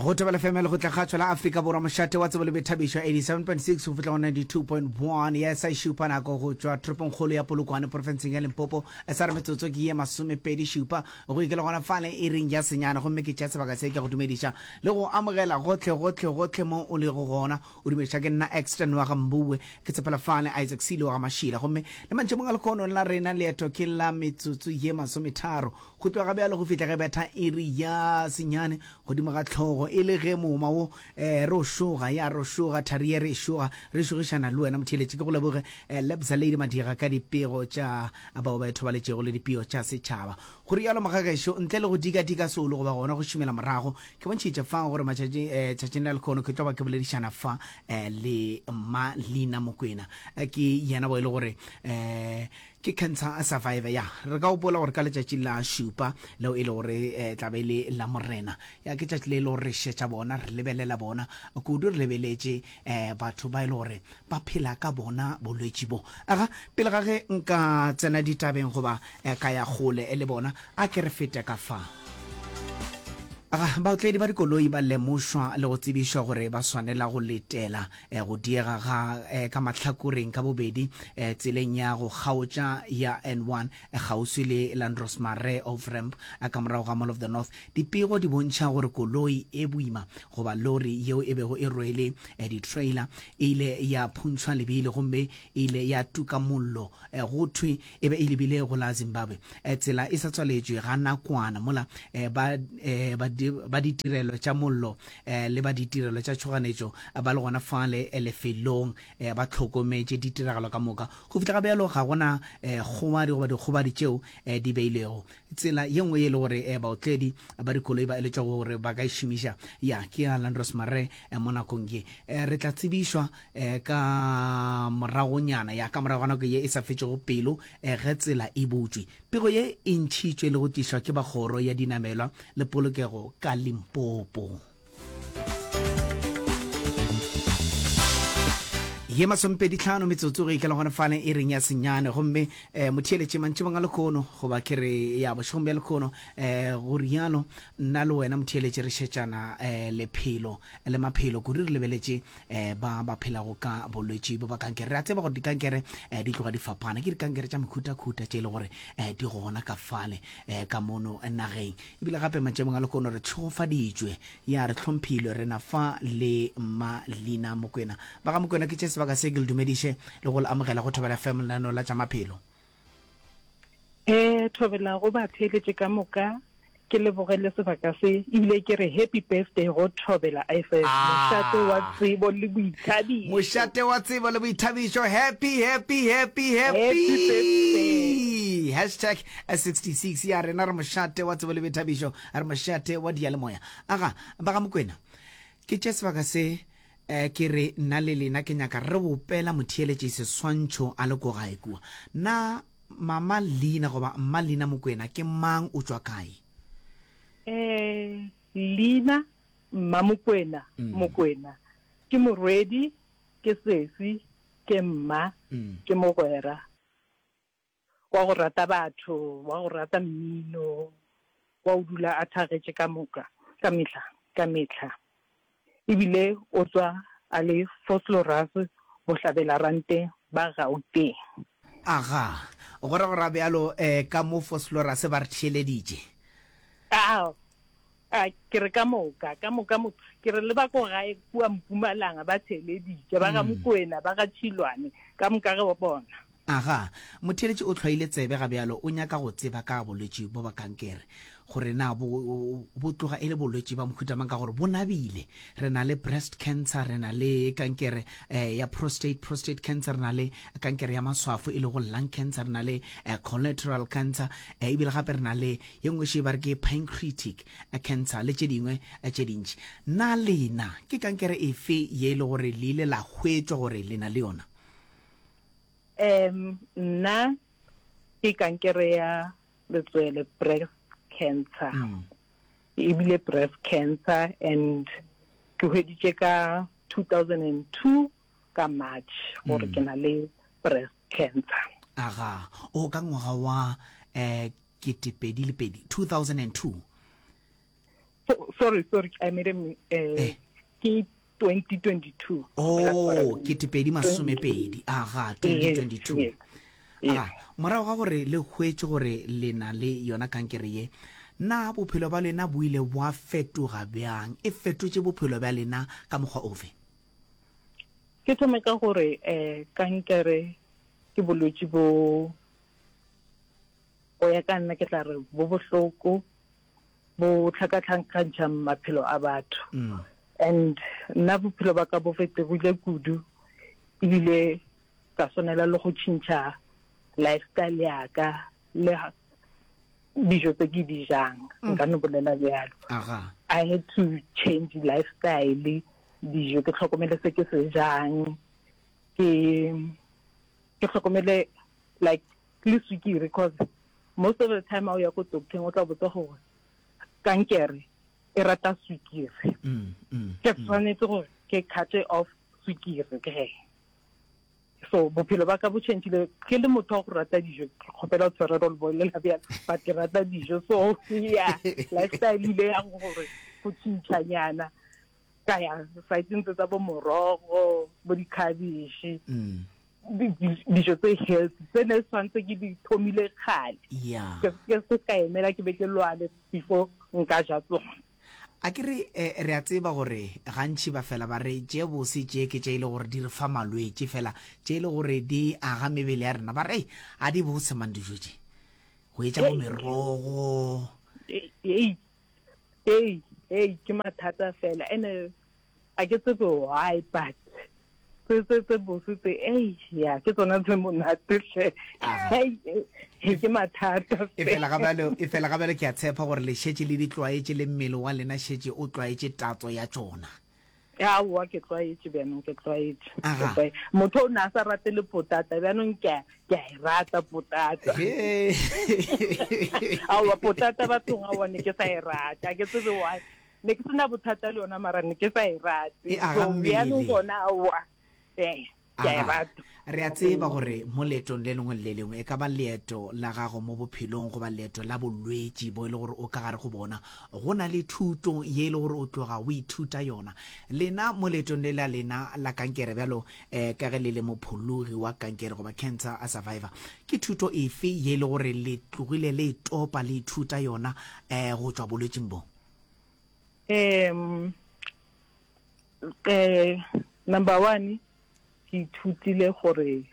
go tebela fm le go tla ga tswela afrika borwa mošate wa tsebo le boithabišo 87.6 go fihla go 92.1 ya sa šupa nako go tšwa toropongkgolo ya polokwane porofenseng ya limpopo e sa re metsotso ke ye masomepedi šupa go ikela gona fale e reng ya senyana gomme ke tša sebaka se ke go dumediša le go amogela gotlhe gotlhe gotlhe mo o lego gona o dumediša ke nna exton wa ga mboue ke tshepela fale isaac sele wa ga mašila gomme le mantšhemong a lekgono la rena leeto ke la metsotso ye masometharo Go tloga bjalo go fihla ge betha iri ya senyane godimo ga hlogo, e le ge mooma wo eh, re o šoga, ya re o šoga, thari ye re e šoga, re šogišana le wena motheeletši. Ke go leboge eh, Lebza Lady Madiga ka dipego tša bao ba ithobaletšego le dipio tša setšhaba. Go rialo Mogagešo, ntle le go dika-dika solo goba gona go šomela morago, ke bontšhitše fa gore matšatši eh, tšatšing la lekhono ke tlo ba ke boledišana fa eh, le Mma Lina Mokwena. Eh, ke yena bo e le gore eh, Ke Cancer Survivor, ya. Re ka gopola gore ka letšatši la šupa, leo e lego re tla be e le la Morena, ya, ke tšatši le e lego re šetša bona, re lebelela bona, kudu re lebeletše batho ba e lego gore ba phela ka bona bolwetši bo. Aga, pele ga ge nka tsena ditabeng goba ka ya kgole le bona, a ke re fete ka fa. Aga, baotledi ba dikoloi ba lemošwa le go tsebišwa gore ba swanela go letela. eh, go diega ga eh, ka mahlakoreng ka bobedi eh, tseleng ya go kgaotša ya n1 eh, kgauswi le landros mare of ramp eh, ka morago ga mall of the north dipego di bontšha gore koloi e boima goba lori yeo e bego e rwele eh, di-trailer e ile ya phuntšhwa lebili gomme e ile ya tuka mollo eh, go thwe e be e lebile go la Zimbabwe. Eh, tsela e sa tswaletšwe ga nakwana mola eh, ba eh, ba ditirelo tša mollo le ba ditirelo tša tšhoganetšo ba le gona fale lefelong ba tlhokometše ditiragalo ka moka go fihla ga bjalo ga gona kgobadi goba dikgobadi tšeo di beilego tsela ye nngwe e le gore baotledi ba dikoloi ba eletšwa gore ba ka e šomiša ya ke ya landros mare mo nakong ye re tla tsebišwa e, ka moragonyana ya ka morago ga nako ye e sa fetšego pelo e, ge tsela e butšwe. Pego ye e ntšhitšwe le go tlišwa ke ba kgoro ya dinamelwa le polokego ka Limpopo. ye masompedi tlhano metsotso go ikela gone fane e reng ya senyane gomme um eh, motheeletše mantšebong a lekgono goba ke re ya bošegong bja lekgono um go rialo nna le wena motheeletše re šetšana um lephelo le maphelo kudu re lebeletše eh, ba ba phelago ka bolwetši bo ba kankere re a tseba gore dikankere eh, di tloga di fapana ke dikankere tša mekhutakhuta tše e le gore eh, di gona ka fale eh, ka mono nageng ebile gape matšemong a lekono re tlhogofaditšwe ya re tlhomphilwe re na fa le malina mokwena ba ga mokwena ke tše sebaka se ke le dumediše le go le amogela go thobela fm lenaneo la tša maphelo E thobelago batheeletši ka moka, ke leboge le sebaka se, ebile ke re happy birthday go Thobela IFS, Ah. mošate wa tsebo le boithabišo. Mošate wa tsebo le boithabišo. Happy, happy, happy, happy. Happy birthday. Hashtag S66 ya rena re mošate wa tsebo le boithabišo, re mošate wa diyalemoya. Aga, ba ga Mokwena, ke tše sebaka se E, ke re, nna le lena ke nyaka re bopela motheeletši seswantšho a le ko gae kua. Na Mama Lina goba Mma Lina Mokwena ke mang, o tšwa kae? E, Lina, Mma Mokwena, Mokwena, ke morwedi, ke sesi, ke mma, ke mogwera. Wa go rata batho, wa go rata mmino, wa go dula a thagetše ka moka, ka mehla, ka mehla. E bile o tswa a le Vosloorus, bohlabelarante ba Gauteng. Aga, go ra go ra bjalo, ee, ka mo Vosloorus ba re theeleditše. Aa! A ke re ka moka, ka moka motho, ke re le ba ko gae kua Mpumalanga ba theeleditše, ba ga Mokwena, ba ga Tšhilwane, ka moka ge ba bona. Aga, motheeletši o hlwaile tsebe ga bjalo, o nyaka go tseba ka bolwetši bjo ba kankere, gore na bo, bo tloga e le bolwetši ba mohuta mang, ka gore bo nabile. Re na le breast cancer, re na le kankere eh, ya prostate, prostate cancer, re na le kankere ya maswafo e lego lung cancer, re na le eh, collateral cancer, eh, ebile gape re na le Ye nngwe še ba re ke pancreatic cancer le tše dingwe tše dintši. Na lena ke kankere efe ye e le gore le ile la hwetšwa gore le na le yona? Em, Nna ke kankere ya letswele, breast cancer, ebile breast cancer and ke hweditše ka 2002 ka March gore ke na le breast cancer. Aga, o ka ngwaga wa um ketepedi le pedi 2002 Oh, sorry, sorry, I made a mi- eh, Eh. ke 2022. o ketepedi Oh, masomepedi aga Yes, 2022 yes, yes. aga morago ga gore le hwetše gore le na le yona kankere ye na bophelo ba lena bo ile bwa fetoga bjang e fetotše bophelo bja lena ka mokgwa ofe Ke thome ka gore eh kankere ke bolwetši bo Go ya ka nna ke tla re bo bohloko, bo tlhakatlhankantšha maphelo a batho. And nna bophelo ba ka bo fetogile kudu ebile ka swanela le go tšhintšha lifestyle ya ka le dijo tse ke di jang, nka no bolela bjalo. I had to change lifestyle, dijo ke tlhokomele se ke se jang, ke tlhokomele like le swikiri because most of the time ha o ya ko doctor-eng o tla botsa gore kankere e rata swikiri mm, mm, ke mm. tshwanetse gore ke carte off swikiri ke so bophelo ba ka bo changile ke le motho wa go rata dijo ke kgopela go tshwarelo le bolela bjalo but ke rata dijo so ya lifestyle ile yang gore go tšhintšhanyana ka ya saitsentse tsa bo morogo bo dikhabishe mm. dijo tse healthy tse ne tshwanetse ke di thomile kgale ke se ka emela ke be ke lwale before nka ja tsona a ke re eh, re a tseba gore gantšhi ba fela ba re tše bose tše ke tše e le gore di re fa malwetse fela tše e le gore di aga mebele ya rena ba re a di bose mang dijo tše go etša bo merogo ee ke mathata fela ene Ga ke tsebe why but tse tse tse bose tse ei ya ke tsona tse monate hle Hei, ke mathata e fela ga bjalo e fela ga bjalo ke a tshepa gore le šetše le di tlwaetše le mmele wa lena šetše o tlwaetše tatso ya tšona aowa ke tlwaetše bjanong ke tlwaetše Ke Aha. tlwae- motho o ne a sa rate le potata bjanong ke a ke a e rata potata He. aowa potata bathong aowa ne ke sa e rata ke tsebe why ne ke sena bothata le yona mara ne ke sa e rate E aga so mmele. bjalo gona aowa ee ke a e Aga. rata re a tseba gore mo leetong le lengwe le le lengwe e ka ba leeto la gago mo bophelong goba leeto la bolwetši bo e le gore o ka gare go bona go na le thuto ye e le gore o tloga o ithuta yona lena mo leetong le la lena la kankere bjalo um ka ge le le mophologi wa kankere goba cancer a survivor ke thuto efe ye e le gore le tlogile le e topa le ithuta yona um go tšwa bolwetšing bo um eh, number one ke ithutile gore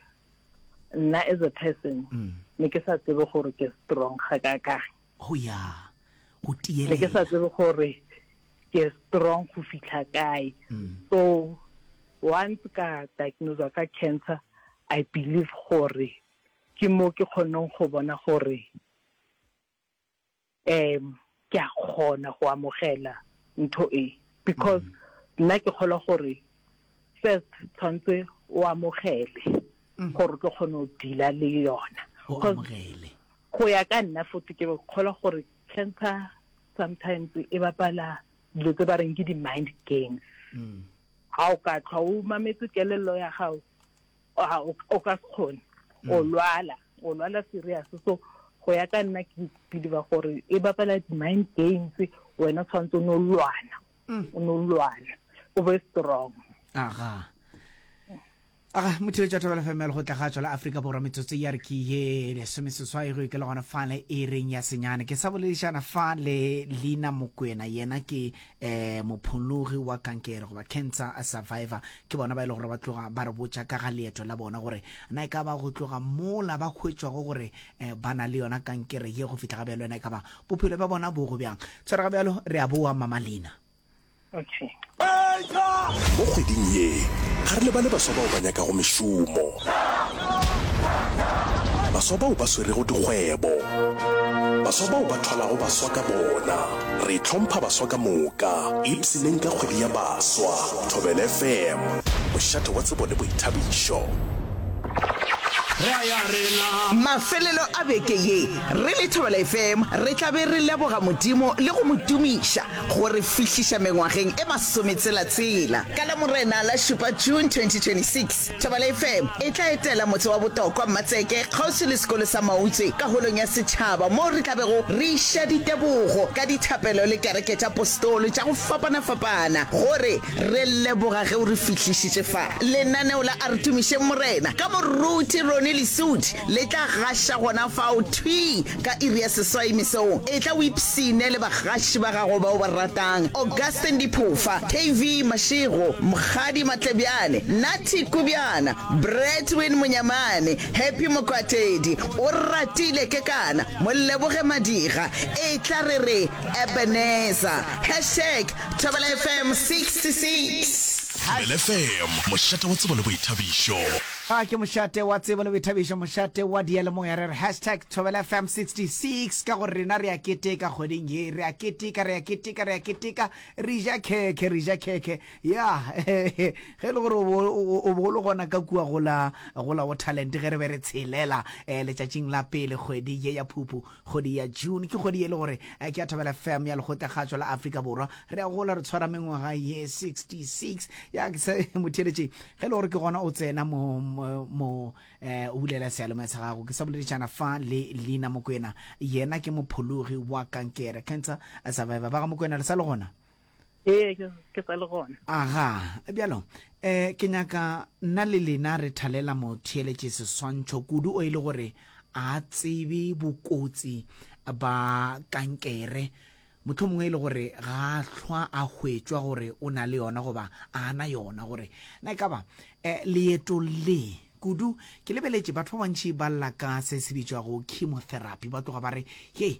nna as a person mm. ne ke sa tsebe gore ke strong ga ka ka go ya go tiele ke sa tsebe gore ke strong go fitlha kae mm. so once ka diagnose ka cancer i believe gore ke mo ke kgoneng go bona gore Um, ke a kgona go amogela ntho e, because nna ke kgolwa gore first tshwanetse o amogele mm. gore o tlo kgone go dila le yona go ya ka nna fote ke kgolwa gore cancer sometimes e bapala dilo tse ba reng ke di-mind games mm. ga o ka tlhwa o mametse kelello ya gago a o o ka se kgone o mm. lwala o lwala serious so go ya ka nna ke believe gore e bapala di-mind games wena tshwanetse o ne o lwana mm. o ne o lwana o be strong aga aga motho yo tšathabela femel go tla ga tswa la aforika borwa metsotso ya re ke ye lesomeseswai go ke le gona fa le e reng ya senyane ke sa boledišana fa le leina mokwena yena ke um mophologi wa kankere goba cancer a survivor ke bona ba e le gore ba tloga ba re botša ka ga leeto la bona gore na e ka ba go tloga mola ba hwetšwago gore um ba na le yona kankere ye go fitlha ga bjalo yona e ka ba bophelo bja bona bo go bjang tshwere ga bjalo re a boa mamalina okay. mo kgweding ye ga re lebale baswa bao ba nyakago mešomo baswa bao ba swerego dikgwebo baswa bao ba thwalago baswa ka bona Re hlompha baswa ka moka, ipshineng ka kgwedi ya baswa. Thobela FM, mošate wa tsebo le boithabišo. Mafelelo a beke ye, re le Thobela FM re tla be re leboga Modimo le go mo tumiša go re fihliša mengwageng e masometsela-tshela. Ka Lamorena la šupa, June 2026, Thabala FM e tla etela motse wa botokwa Mmatseke kgauswi le sekolo sa Mautse ka holong ya setšhaba moo re tla bego re iša ditebogo ka dithapelo le kereke tša postolo tša go fapana-fapana gore re leboga ge o re fihlišitše fa. Lenaneo la A Re Tumišeng Morena ka moruti Ronnie Lesuthi le tla gaša gona fao thwi Ka iri ya seswai mesong, etla o ipshine le bagaši ba gago ba o ba ratang, Augustine Diphofa, KV Mashego, Mokgadi Matlebjane, Natty Kubjana, Bradwin Monyamane, Happy Mokwatedi, Oratile Kekana, Moleboge Madiga, Etla re re Ebenezer. Hashtag Thobela FM 66. Thobela FM, mošate wa tsebo le boithabišo. Ga ke mošate wa tsebo le boithabišo, mošate wa diyalemoya. Re re hashtag Thobela FM 66 ka gore rena re a keteka kgweding ye. Re a keteka, re a keteka, re a keteka, re ja khekhe, re ja khekhe. Ya, ge e le gore o bo o le gona ka kua go la, go la Waterland ge re be re tshelela letšatšing la pele kgwedi ye ya Phuphu, Kgwedi ya June ke kgwedi ye le gore ke ya Thabela FM ya Lekgotlagatšwa la Afrika Borwa. Re a gola re tshwara mengwaga ye 66. Ya ke se motheletše ge le gore ke gona o tsena mo mo eh, o bulela sealomaya sa gago. Ke sa boledišana fa le Lina Mokwena. Yena ke mophologi wa kankere, cancer survivor. Ba ga Mokwena le sa le gona? ee ke sa le gona aga bjalo um ke nyaka nna le lena re thalela motheeletše seswantšho kudu o e le gore a tsebe bokotsi ba kankere motlho mongwe e le gore ga a hlwa a hwetšwa gore o na le yona goba a na yona gore na e ka ba um leeto le kudu ke lebeletše batho ba bantšhi ba lla ka se se bitšwago chemotherapy ba tloga ba re he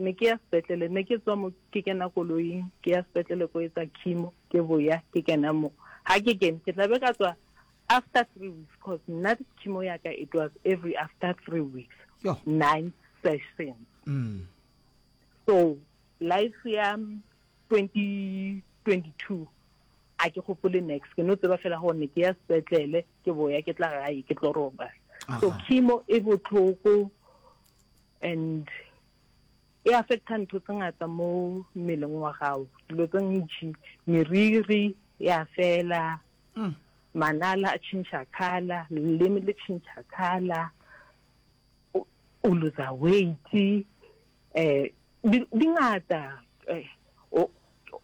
Ne ke ya sepetlele, ne ke tswa mo ke kena koloing ke ya sepetlele ko etsa chemo, ke boya ke kena mo. Ha ke kene ke tla be ka tswa after three weeks cause nna chemo ya ka it was every after three weeks, Yoh. nine sessions. Mm. So life ya 2022 a ke gopole next ke no tseba fela gore ne ke ya sepetlele ke boya ke tla gae ke tlo roba. So Aha. chemo e botlhoko And e affecta ntho tse ngata mo mmeleng wa gago, dilo tse ntši, meriri ya fela, mm. manala a change color, leleme le change color, o loser weight, eh, di ngata, eh,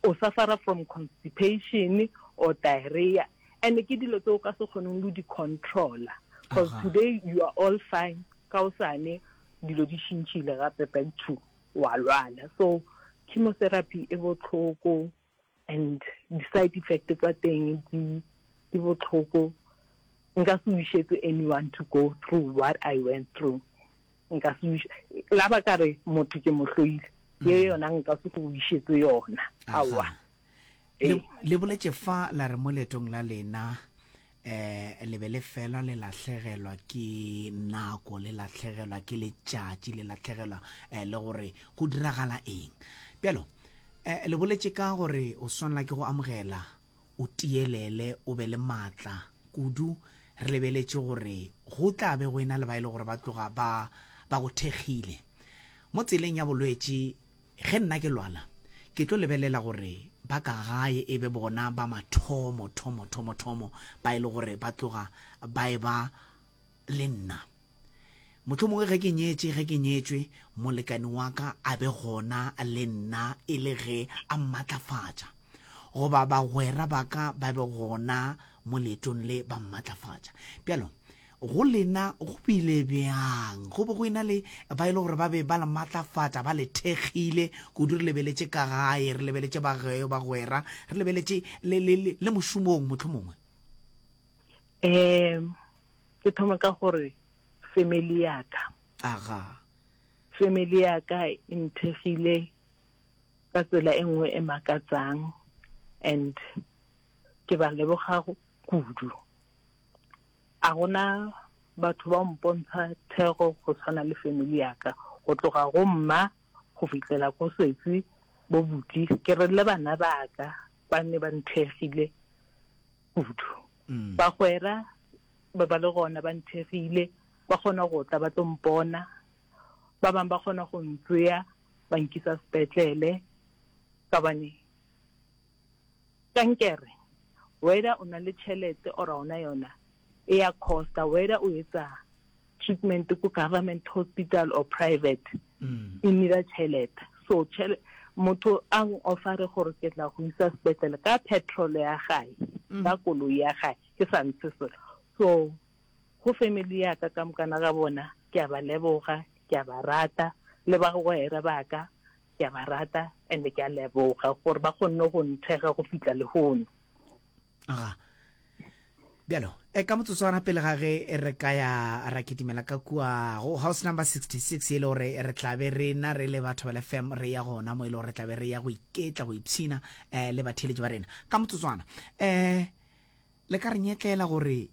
o suffer-a from constipation or diarrhea and ke dilo tse o ka se kgoneng le di controla because today you are all fine ka o sane dilo di shintšhile gape back to wa lwala so chemotherapy e botlhoko and di-side effect tsa teng di botlhoko nka se wišetse anyone to go through what I went through nka se wiša la ba ka re motho ke mo hloile ye mm. yona nka se go wišetse yona aowa le boletse fa la re mo letong la lena eh le be le fela le latlhegelwa ke nako le latlhegelwa ke letšatši le latlhegelwa eh, le gore go diragala eng bjalo eh, le boletse ka gore o swanela ke go amogela o tiyelele o be le maatla kudu re lebeletše gore go tla be go ena le ba e le gore ba tloga ba ba go thekgile mo tseleng ya bolwetši ge nna ke lwala ke tlo lebelela gore ba ka gae e be bona ba mathomo thomo thomo thomo ba e le gore ba tloga ba e ba le nna. Mohlomongwe ge ke nyetše, ge ke nyetšwe, molekane wa ka a be gona le nna e le ge a mmatlafatša, goba bagwera ba ka ba be gona mo leetong le ba mmatlafatša. Bjalo, go lena go bile bjang? Go be go ena le ba e le gore ba be ba le matlafatša, ba le thekgile kudu. Re lebeletše ka gae, re lebeletše bagwera, re lebeletše le mošomong mohlomongwe. um ke thoma ka gore family yaka aga family yaka e nthegile ka tsela e nngwe e makatsang and ke ba leboga kudu a gona batho ba mpontsha thego go tshwana le family yaka go tloga go mma go fitlhela ko setsi bo buti ke re le bana baka ba ne ba nthegile kudu. Bagwera ba ba le gona ba nthekgile, ba kgona go tla ba tlo mpona, ba bangwe ba kgona go ntsea ba nkisa sepetlele ka bane kankere whether o na le tšhelete or a ona yona e ya costa whether o etsa treatment ko government hospital or private e nira tšhelete so motho a ofare gore ke tla go isa sepetlele ka petrol ya gae mm. ka koloi ya gae ke sa ntshe selo so go family ya ka ka mokana ga bona ke a ba leboga ke a ba rata le ba go ere ba ka ke a ba rata and ke a leboga gore ba kgonne go nthega go fitlha lehono aga bjalo e ka motsotswana pele ga ge e re ka ya ra kitimela ka kua go house number 66 e le gore re tlabe rena re le batho ba lefem re ya gona mo e le gore re tlabe re ya go iketla go ipshina um le batheletši ba rena ka motsotswana um le ka re nyetlela gore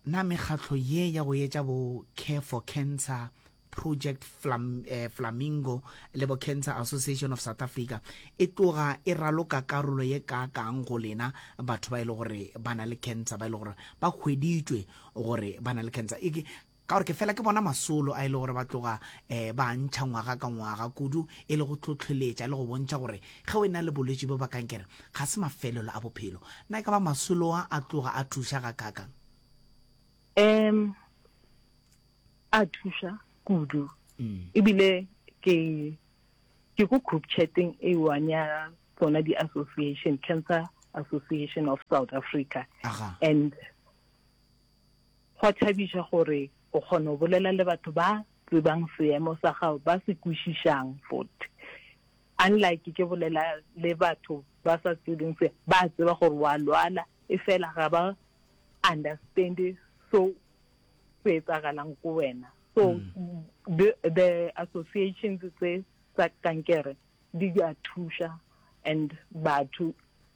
Na mekgatlo ye ya go etša bo Care for Cancer, Project Flam, eh, Flamingo le bo Cancer Association of South Africa e tloga e raloka karolo ye kaakang go lena batho ba e le gore ba na le cancer, ba e le gore ba hweditšwe gore ba na le cancer? E, Ka gore ke fela ke bona masolo a e le gore ba tloga um ba a ntšha ngwaga ka ngwaga, kudu e le go hlohleletša le go bontšha gore ge o e na le bolwetši bjo ba kankere ga se mafelelo a bophelo. Na e ka ba masolo a a tloga a thuša gakaakang? Um a thuša kudu, ebile ke ke ko group chatting e one ya tsona di-association, Cancer Association of South Africa, and Go a thabiša gore o kgona go bolela le batho ba tsebang seemo sa gago, ba se kwešišang fote. Unlike ke bolela le batho ba sa tsebeng se, ba a tseba gore o a lwala efela ga ba understand-e so se etsagalang ko wena. So the, the associations tse tsa kankere di a thuša and batho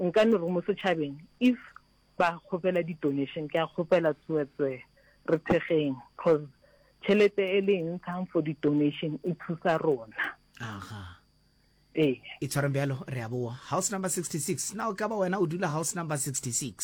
Nka le re mo setšhabeng if ba kgopela di donation ke a kgopela tsoetswe re thekgeng cause tšhelete e le e ntshang for di donation e thusa rona. Aha. Ee. E tshwareng bjalo re a boa. House number 66. Na o ka ba wena o dula house number 66?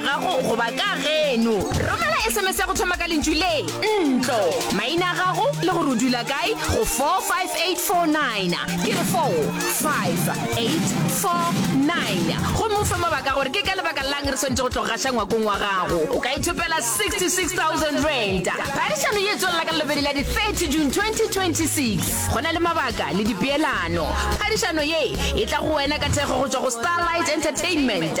gago goba ka geno romela sms ya go thoma ka lentšu le ntlo maina a gago le gore o dula kae go 45849 ke re 45849 gomme o fe mabaka gore ke ka lebaka lang re swanetse go tlogo gaša ngwakong wa gago o ka ithopela 66000 rand phadišano ye tswelela ka lobedi la di-30 june 2026 go na le mabaka le dipeelano phadišano ye e tla go wena ka thekgo go tswa go starlight entertainment